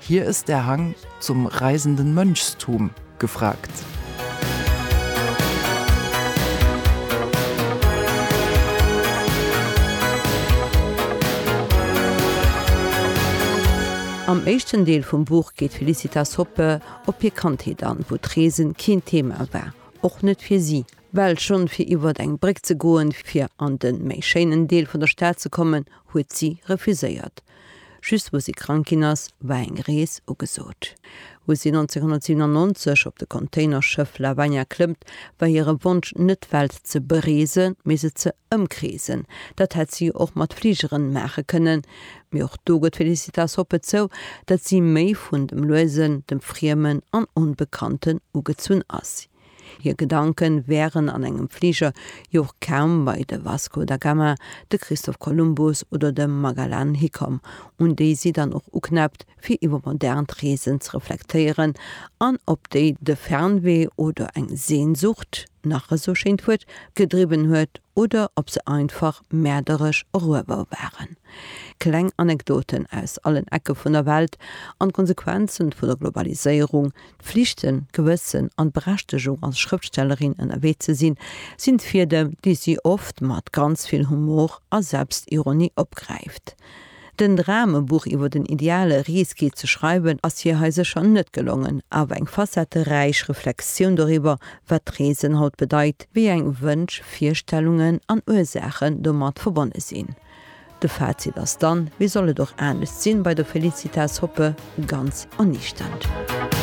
Hier ist der Hang zum reisenden Mönchstum gefragt. Am éischten Deel vum Buch geet d'Felicitas Hoppe op hir Kandheet an, wou d'Reesen keen Thema war, och net fir si. Well schonn fir iwwert eng Bréck ze goen, fir an den méi schéinen Deel vun der Stad ze kommen, huet si refuséiert. Just wou si krank ginn ass, war eng Rees ugesot. Wou si 1997 op de Containerschëff Lavagna klëmmt, war hire Wonsch net d'Welt ze bereesen, mee se ze ëmkreesen. Dat hätt si och mat Fligeren maache kënnen. Mee och do gëtt d'Felicitas Hoppe zou, datt si méi vun dem Luesen, dem Friemen an Onbekannten ugezunn ass. Hir Gedanke wären an engem Fliger jo och kaum bei de Vasco da Gama, de Christoph Kolumbus oder de Magellan hikomm, un déi si dann och uknäppt, fir iwwer modernt Reesen ze reflektéieren an op déi de Fernwee oder eng Sehnsucht, nach esou schéint Wuert, gedriwwen huet oder ob se einfach mäerderesch eruewer waren. Kleng Anekdoten aus allen Ecke vun der Welt an d'Konsequenze vu der Globaliséierung, Flichten, Gewëssen an d'Berechtegung als Schrëftstellerin ënnerwee ze sinn, sinn d'Fiedem, déi si oft mat ganz vill Humor a Selbstironie opgräift. Den Dram, e Buch iwwer den ideale Risky ze schreiwen, ass hir hei sécher net gelongen, awer eng facetteräich Reflexioun doriwwer, wat d'Reesen haut bedeit, wéi eng Wënsch, Virstellungen an Ursaachen domat verbonne sinn. De Fazit ass dann, wéi soll et och anescht sinn, bei der Felicitas Hoppe ganz erniichternd.